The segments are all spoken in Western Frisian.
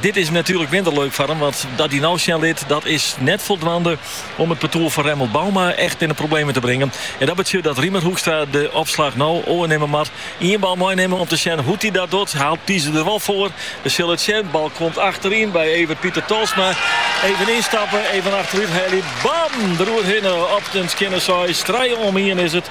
Dit is natuerlik minder leuk foar him, want dat hij no sjen lit dat is net foldwaande om it partoer fan Remmelt Bouma echt yn de problemen te bringen. En dat betsjut dat Riemer Hoekstra de opslach no oernimme moat. Ien bal meinimme om te sjen hoe't hij dat docht, haalt Pieze der wol foar. We sille it sjen. Bal komt achteryn by Evert Pieter Tolsma. Even ynstappen, even achterút heljen. Bam! Der oerhinne op de Skinner Seis. Trije om ien is it.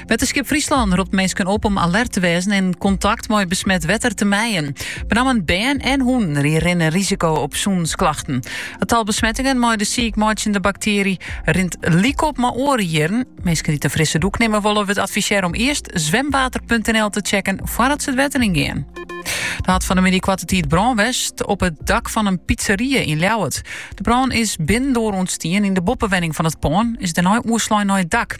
Wetterskip Fryslân ropt minsken op om alert te wêzen en kontakt mei besmet wetter te mijen. Benammen bern en hûnen ri- rinne risiko op sûnensklachten. It tal besmettingen mei de siikmeitsjende baktearje rint lykop mei oare jierren. Minsken dy't in frisse dûk nimme wolle, wurdt advisearre om earst zwemwater.nl te checken foardat se it wetter yn gean. Der hat fan de middei koarte tiid brân west op it dak fan in pizzeria yn Ljouwert. De brân is binnendoar ûntstien yn de boppewenning fan it pân, is dêrnei oerslein nei it dak.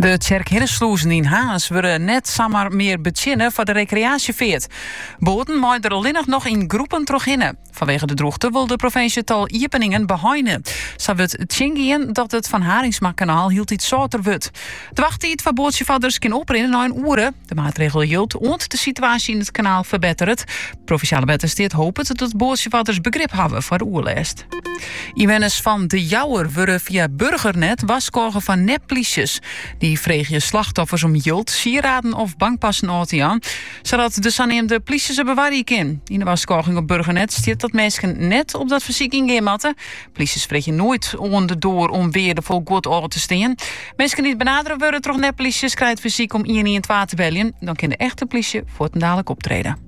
De Tsjerk Hiddesslûzen yn Harns wurde net samar mear betsjinne foar de rekreaasjefeart. Boaten meie der allinnich noch yn groepen trochhinne. Fanwege de drûchte wol de provinsje it tal iepeningen beheine. Sa wurdt tsjingien dat it Van Harinxmakanaal hieltyd sâlter wurdt. De wachttiid foar boatsjefarders kin oprinne nei in oere. De maatregel jildt oant de situaasje yn it kanaal ferbetteret. Provinsjale Wettersteat hopet dat boatsjefarders begrip hawwe foar de oerlêst. Ynwenners fan De Jouwer wurde fia Burgernet warskôge foar nepplysjes. Dy freegje slachtoffers om jild, sieraden of bankpassen ôf te jaan, sadat de saneamde plysje se bewarje kin. Yn de warskôging op Burgernet stiet dat minsken net op dat fersyk yngean moatte. Plysjes freegje noait oan de doar om weardefol guod ôf te stean. Minsken dy't benadere wurde troch nepplysjes krije it fersyk om ien-ien-twa te beljen. Dan kin de echte plysje fuortendalik optrede.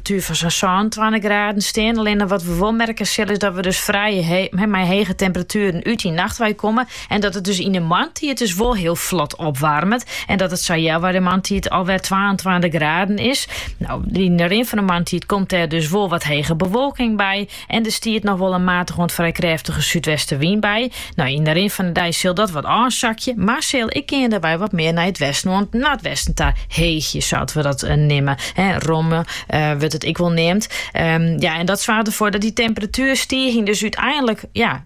Tussen fan sa'n sânentweintich graden stean. Allinne wat we wol merke sille is dat we dus frij mei hege temperatueren út 'e nacht wei komme. En dat it dus yn de moarntiid dus wol hiel flot opwarmet. En dat it sa healwei de moarntiid alwer twaentweintich graden is. Nou, yn de rin fan de moarntiid komt dêr dus wol wat hege bewolking by. En der stiet noch wol in matige oant frij krêftige súdwestenwyn by. No, yn de rin fan de dei sil dat wat ôfsakje, mar sil ek geandewei wat mear nei it westen oant noardwesten ta heegje, sa't we dat neame. Romme wurdt it ek wol neamd. Ja, en dat soarget derfoar dat dy temperatuerstiging dus úteinlik ja,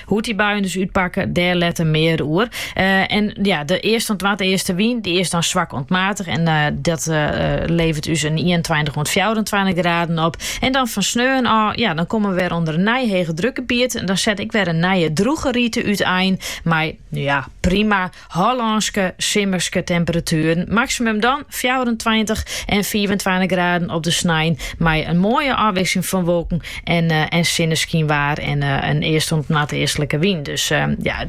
Hoe't dy buien dus útpakke, dêr letter mear oer. en ja, de westen oant noardwestenwyn, dy is dan swak oant matich en dat leveret dus in 21 oant 24 graden op. En dan fan sneon ôf, ja, dan komme we wer ûnder in nij hegedrukgebiet. En dan set ek wer in nije droege rite útein. Mar ja, prima Hollânske simmerske temperatueren, maksimum dan fjouwerentweintich en fiifentweintich graden op de snein, mei in moaie ôfwikseling fan wolken en en sinneskyn en in east oant noardeastlike wyn. Dus ja,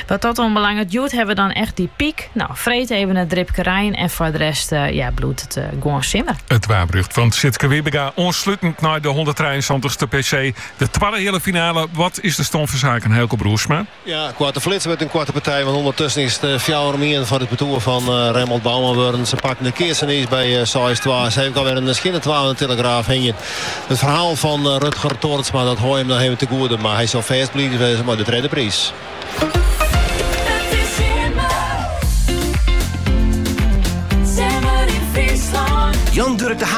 wat dat oanbelanget, hjoed hawwe we dan echt dy pyk. No, freed efkes in dripke rein en foar de rest ja, bliuwt it gewoan simmer. It waarberjocht fan Sytse Wybenga oanslútend nei de hûnderttrijeensantich ste PC, de twadde heale finale. Wat is de stân fan saken, Heiko Broersma? Ja, koarte flits mei in koarte partij, want ûndertusken is it fjouwer om ien foar it partoer fan Remmelt Bouma wurden. Se pakken de keats net iens by seis twa. Se hawwe ek alwer in skjinne twa oan de tillegraaf hingjen. It ferhaal fan Rutger Torensma, dat hawwe jim noch even tegoede, mar hy sil fêst bliid wêze mei de tredde priis.